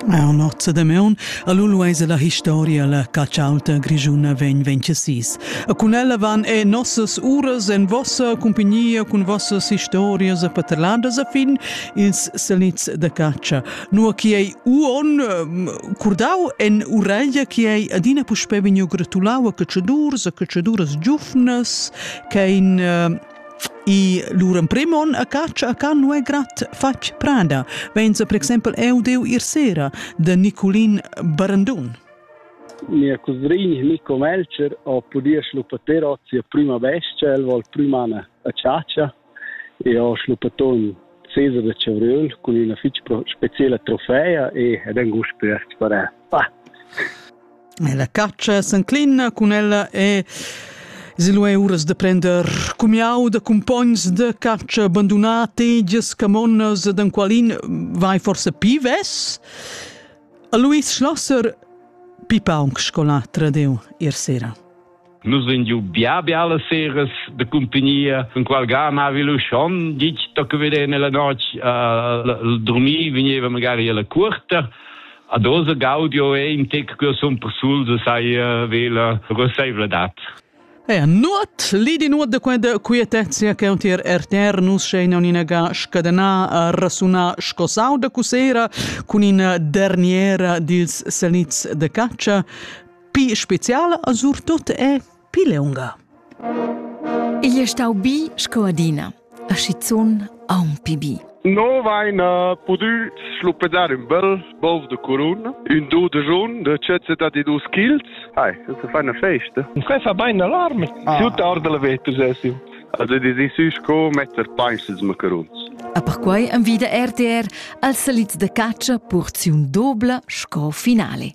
Our nozza damaun a lu luaisa la historia la catschauta grischuna vegn vencesis. E cun ella van e nossas uras en vossa cumpagnia cun vossas historias e paterladas a fin ils salits da caccia. Nua chi ei uon ehm, curdau en uraglia chi ei adina puspè vegniu gratulau a cacciadurs, a cacciaduras giufnas, che ein ehm, I lur emprim on a catscha a can nu è grat fatg prada, vainsa per exempel eu deu ir sera da Niculin Barandun. Mia cusrin Nico Melcher ho pudì schluppater hoz sia prüma bestia, el vol prüm an a chatscha e ho schluppaton sesa da chavriel cun üna fich speciela trofea e ed angust per sparar. Ah. E la caccia s'enclina cun ella e Silua è uras da prender cumiau da cumpogns de caccia abandonat tegias camonnas ed qualin vai forse pi ves? A Luis Schlosser pi paunc scolatra deu ir sera. Nus vegn giu bia bia las seras de compagnia, con qual ga mavi lu schon ditg tocca vedere nella noc uh, dormir, vegneva magari alla curta. Ad osa gaudio è in tec che son persul de sai uh, vela roseivladat. Eh, nuot, lidi nuot de quenda quietezia che untir RTR nus scheina uninaga scadena rasuna scosau de cusera cun in derniera dils seniz de caccia Pi speziala a surtut è Pileunga. Igl è stau bi sco adina, a schizun aunc bi. No vaina pudü schluppedar ün bel bov de curun, ün do de jun de cezze da di dus childs. Hai, das ist eine Feste. Quai fa bain alarm. Ah. Tutta ora della veters essim. Also die si sü sco metter peisels macaruns. A perquai envida RTR als salits de caccia porziun dobla sco finale.